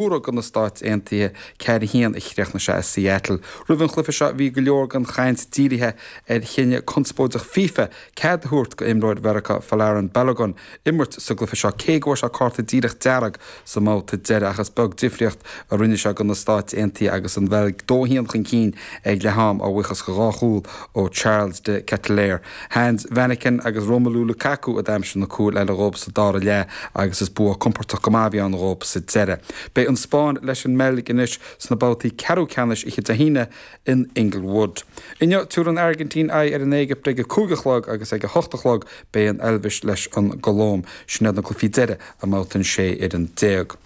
Cúradh do na Stáit Aontaithe ceathair a haon a chríochnaigh sé i Seattle. Roimh an chluiche seo bhí go leor den chaint dírithe ar chinneadh conspóideach fifa cead a thabhairt go imreoir Mheiriceá Folarin Balogun imirt sa gcluiche seo cé go bhfuair sé cárta díreach dearg sa mbabhta deireadh ach is beag difríocht a rinne seo go na Stáit Aontaithe agus an Bheilg dó a haon chun cinn ag leath-am a bhuíochas dhá chúl ó Charles De Ketelaere. Hans Vanaken agus Romelu Lukaku a d'aimsigh na cúil eile dhóibh sa dara leath agus is bua compordach go maith a bhí ann dhóibh sa deireadh. Beidh an Spáinn leis an mBeilg anois sna babhtaí ceathrú ceannais oíche Dé hAoine in Inglewood. Inniu tabharfaidh an Airgintín aghaidh ar an Éigipt ag a cúig a chlog agus ag a hocht a chlog beidh an Eilbheis leis an gColóim. Sin iad na cluichí deireadh i mbabhta an sé fhoireann déag.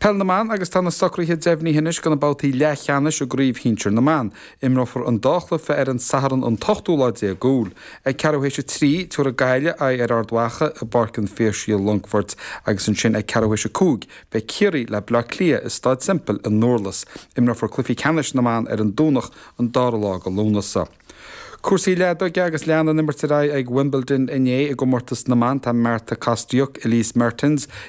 Peil na mBan agus tá na socraithe deimhníthe anois go na babhtaí leath cheannais i gCraobh Shinsear na mBan. Imreofar an dá chluiche ar an Satharn an t-ochtú lá déag Iúil, ag ceathrú théis a trí, tabharfaidh Gaillimh aghaidh ar Ard Mhacha i bPáirc an Phiarsaigh, Longfoirt, agus ansin ag ceathrú théis a cúig, beidh Ciarraí le Bleá Cliath i Stáid Semple i nDurlas. Imreofar cluichí ceannais na mban ar an Domhnach an dara lá go Lúnasa. Cúrsaí leadóige agus lean an imirt ar aghaidh ag Wimbledon inné i gcomórtas na mban tá Marta Kostyuk, Elise Mertens,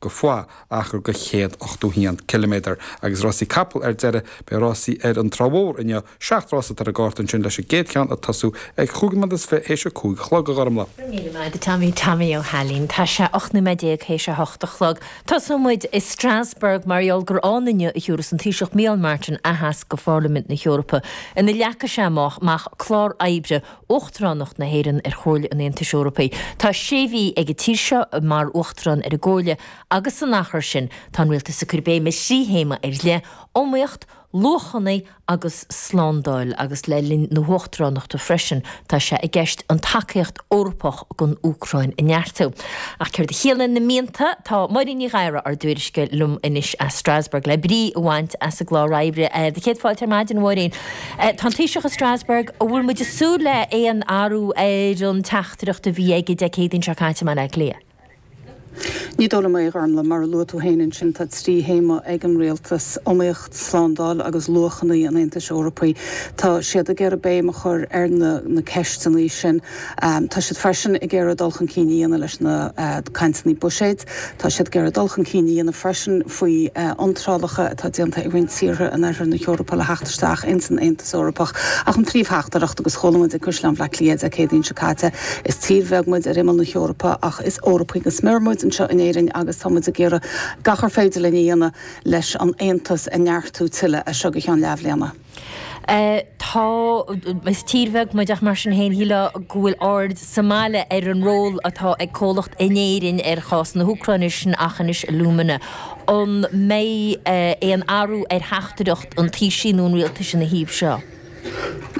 go Foix, achar de 181 km, agus rásaí capall ar deireadh. Beidh rásaí ar an Trá Mhór inniu, seacht rása atá ar an gcárta ansin leis an gcéad cheann ag tosú ag cúig nóiméad is fiche théis a cúig a chlog, a Ghormlaith. Go raibh míle maith agat Tommy, Tommy Ó hAilín. Tá sé ocht nóiméad déag théis a hocht a chlog. Tosóidh muid i Strasbourg mar gheall gur ann inniu a thiúras an Taoiseach Micheál Martin aitheasc go Phairlimint na hEorpa ina leagfaidh sé amach clár oibre Uachtaránacht na hÉireann ar Chomhairle an Aontais Eorpaigh. Tá sé mhí ag an tír seo mar Uachtarán ar an gComhairle agus san achar sin tá an rialtas ag cur béim ar thrí théama ar leith, iomaíocht, luachanna agus slándáil agus le linn na hUachtaránachta freisin tá sé i gceist an tacaíocht Eorpach don Úcráin a neartú. Ach céard a chiallaíonn na mianta? Tá Máirín Ní Ghadhra, ár dtuairisceoir, liom anois as Strasbourg le brí a bhaint as an gclár oibre. Do chéad fáilte ar maidin, a Mháirín. Tá an Taoiseach i Strasbourg. An bhfuil muid ag súil le aon athrú ar an teachtaireacht a bhí aige Dé Céadaoin seo caite i mBaile Átha Cliath? Ní dóigh liom é a Ghormlaith. Mar a luaigh tú féin ansin tá trí théama ag an rialtas, iomaíocht, slándáil agus luachanna an Aontais Eorpaigh. Tá siad ag iarraidh béim a chur ar na ceisteanna sin. Tá siad freisin ag iarraidh dul chun cinn a dhéanamh leis na cainteanna buiséid. Tá siad ag iarraidh dul chun cinn a dhéanamh freisin faoi iontrálacha atá déanta ag roinnt tíortha in oirthear na hEorpa le theacht isteach ins an Aontas Eorpach ach an phríomhtheachtaireacht agus chuala muid ag Caisleán Bhleá Cliath Dé Céadaoin seo caite, is tír bheag muid ar imeall na hEorpa ach is Eorpaigh go smior muid anseo in Éirinn agus tá muid ag iarraidh gach ar féidir linn a dhéanamh leis an Aontas a neartú tuilleadh as seo go ceann leathbhliana. Tá. Is tír bheag muid ach mar sin féin shílfeá go bhfuil aird sa mbaile ar an ról atá ag comhlacht in Éirinn ar chás na hÚcráine, sin Aughinish Alumina. An mbeidh aon athrú ar theachtaireacht an Taoisigh nó an Rialtais ina thaobh seo?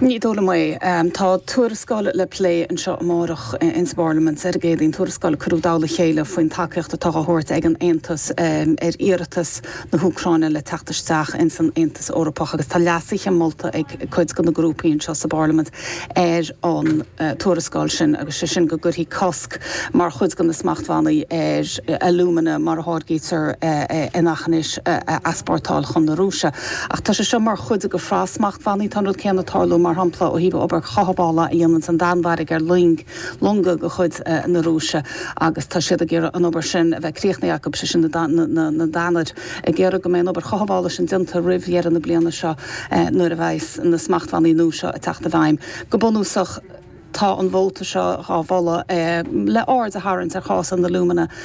Ní dóigh liom é. Tá tuarascáil le plé anseo amárach ins an bParlaimint, ar an gCéadaoin, tuarascáil a cuireadh i dtoll a chéile faoin tacaíocht atá á thabhairt ag an Aontas ar iarratas, na hÚcráine le teacht isteach ins an Aontas Eorpach agus tá leasuithe molta ag cuid de na grúpaí anseo sa bParlaimint ar an tuarascáil sin agus sé sin go gcuirfí cosc mar chuid de na smachtbhannaí ar alúmana mar a tháirgítear é in Aughinish a easpórtáil chun na Rúise ach tá sé seo mar chuid de shraith smachtbhannaí tá an rud céanna ag tarlú mar shampla ó thaobh obair chothabhála a dhéananns an Danmhairg ar loing longa de chuid na Rúise agus tá siad ag iarraidh an obair sin a bheith críochnaithe acu, is é sin na Danair, ag iarraidh go mbeidh an obair chothabhála sin déanta roimh dheireadh na bliana seo nuair a bheas na smachtbhannaí nua seo ag teacht i bhfeidhm. Go bunúsach tá an vóta seo dhá mholadh le aird a tharraingt ar chás an Alumina.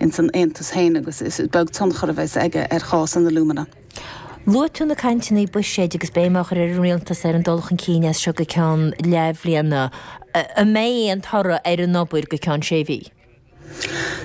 ins an Aontas féin agus is beag tionchar a bheas aige ar chás an Alumina. Luaigh tú na cainteanna buiséid agus béim á chur ag an Rialtas ar an dul chun cinn as seo go ceann leathbhliana. An mbeidh aon toradh ar an obair go ceann sé mhí?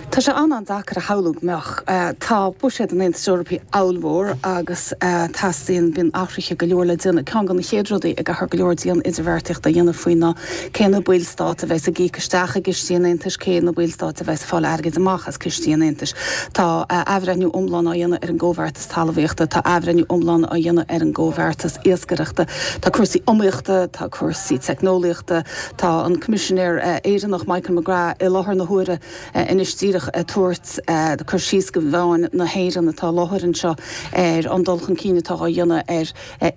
Tá sé an-an-deacair a shamhlú go mbeadh. Tá buiséad an Aontais Eorpaigh ollmhór agus teastaíonn, bíonn athruithe go leor le déanamh. Ceann de na chéad rudaí a gcaithfear go leor dian-idirbheartaíochta a dhéanamh faoi ná Cé na baill stáit a bheas ag íoc isteach i gcistí an Aontais? Cé na baill stáit a bheas ag fáil airgid amach as cistí an Aontais? Tá athbhreithniú iomlán á dhéanamh ar an gcomhbheartas talmhaíochta. Tá athbhreithniú iomlán á dhéanamh ar an gcomhbheartas iascaireachta. Tá cúrsaí iomaíochta. Tá cúrsaí teicneolaíochta. Tá an Coimisinéir Éireannach, Michael McGrath, i láthair na huaire anois díreach ag tabhairt cur síos do mheáin na hÉireann atá i láthair anseo ar an dul chun cinn atá á dhéanamh ar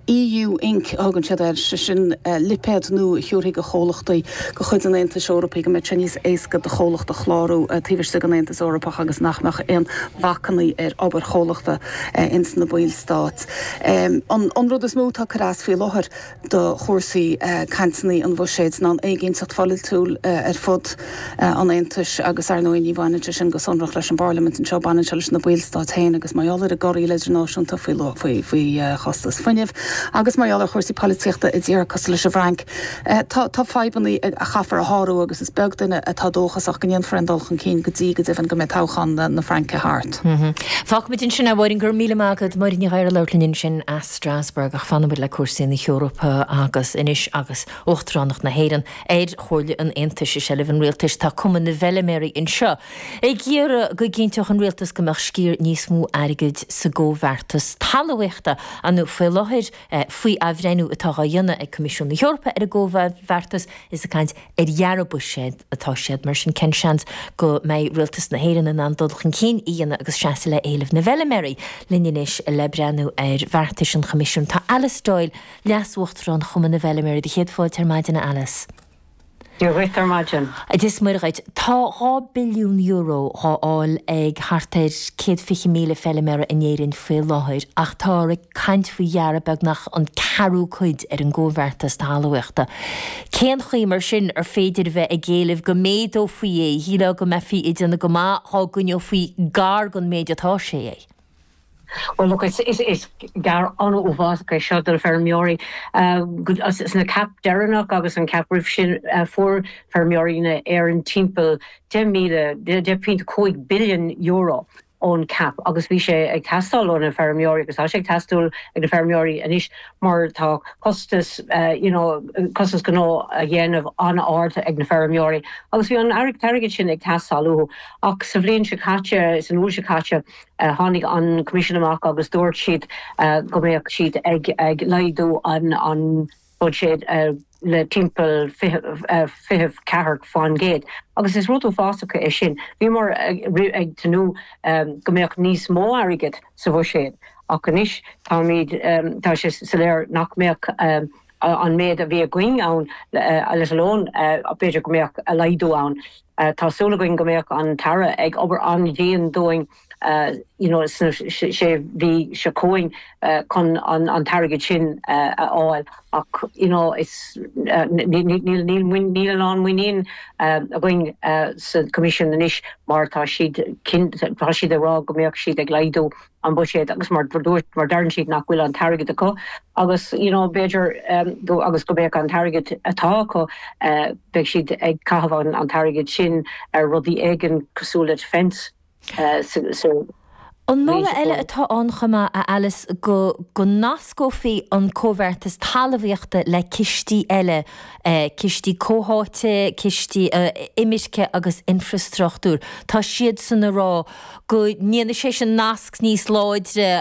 EU Inc. a thugann siad air, sé sin lipéad nua a thabharfaí do chomhlachtaí de chuid an Aontais Eorpaigh go mbeidh sé níos éasca do chomhlacht a chlárú taobh istigh den Aontas Eorpach agus nach mbeadh aon bhacainní ar obair chomhlachta ins na baill stáit. An rud is mó atá ag cur as faoi láthair do chúrsaí cainteanna an bhuiséid ná an éiginnteacht pholaitiúil ar fud an Aontais agus, ar ndóigh, ní bhaineann sé sin go sonrach leis an bParlaimint anseo, baineann sé leis na ballstáit féin agus mar gheall ar an gcorraíl idirnáisiúnta faoi chostas fuinnimh agus mar gheall ar chúrsaí polaitíochta i dtíortha cosúil leis an bhFrainc, tá fadhbanna a chaithfear a shárú agus is beag duine atá dóchasach go ndéanfar aon dul chun cinn go dtí go deimhin go mbeidh toghchán na Fraince thart. Fágfaimid ansin é. A Mháirín, go raibh míle maith agat. Máirín Ní Ghadhra ag labhairt linn ansin as Strasbourg ach fanfaimid le cúrsaí na hEorpa agus anois agus Uachtaránacht na hÉireann. ar Chomhairle an Aontais i seilbh an Rialtais, tá Cumann na bhFeiliméaraí anseo ag iarraidh go gcinnteodh an Rialtas go mbeadh sciar níos mó airgid sa gComhbheartas Talmhaíochta, ann faoi láthair faoi athbhreithniú, atá á dhéanamh ag Coimisiún na hEorpa ar an gComhbheartas. Is ag caint ar ghearradh buiséad atá siad, mar sin cén seans go mbeidh Rialtas na hÉireann in ann dul chun cinn a dhéanamh agus seasamh le héilimh na bhfeiliméaraí? Linn anois le breathnú ar bheartais an Choimisiúin tá Alice Doyle, Leas-Uachtarán Chumann na bhFeiliméirí, céad fáilte ar maidin, a Alice. Dia dhuit ar maidin. Dia is Muire dhuit. Tá €2 billiún dhá fháil ag thart ar 120,000 feiliméara in Éirinn faoi láthair, ach táthar ag caint faoi ghearradh beagnach an ceathrú cuid ar an gComhbheartas Talmhaíochta. Cén chaoi mar sin ar féidir bheith ag éileamh go méadófaí é? Shíleá go mbeifí ag déanamh go maith dhá gcoinneofaí gar gon méid atá sé, é? Bhuel, look, is gearradh an-uafásach é seo do na feirmeoirí. Sa CAP deireanach agus an CAP roimh sin, fuair feirmeoirí na h-Éireann timpeall deich míle, deich point cúig billion euro ón CAP agus bhí sé ag teastáil ó na feirmeoirí agus tá sé ag teastáil ag na feirmeoirí anois mar tá costas, you know, costas gnó a dhéanamh an-ard ag na feirmeoirí agus bhí an t-airgead sin ag teastáil uathu ach sa bhliain seo caite, san Iúil seo caite. Tháinig an Coimisiún amach agus dúirt siad go mbeadh siad ag laghdú an buiséid le timpeall 24 fán gcéad agus is rud uafásach é sin. Bhíomar ag tnúth go mbeadh níos mó airgid sa bhuiséad ach anois táimid, tá sé soiléir nach mbeadh. An méid a bhí againn ann, let alone, b'fhéidir go mbeadh laghdú ann. Tá súil againn go mbeadh an tAire ag obair an-dhian dúinn, you know, sna sé mhí seo chugainn chun an t-airgead sin a fháil ach, you know, níl a lán muinín againn sa Choimisiún anois mar tá siad, tá siad ag rá go mbeadh siad ag laghdú an buiséad agus mar dúirt mar deireann siad nach bhfuil an t-airgead acu agus you know b'fhéidir go agus go mbeadh an t-airgead atá acu beidh siad ag caitheamh an an t-airgead sin ar rudaí éigin cosúil le defence so An moladh eile atá ann chomh maith, a Alice, go go nascófaí an Comhbheartas Talmhaíochta le cistí eile cistí comhtháite, cistí imirce agus infreastruchtúr, tá siadsan ag rá go ndéanfaidh sé sin nasc níos láidre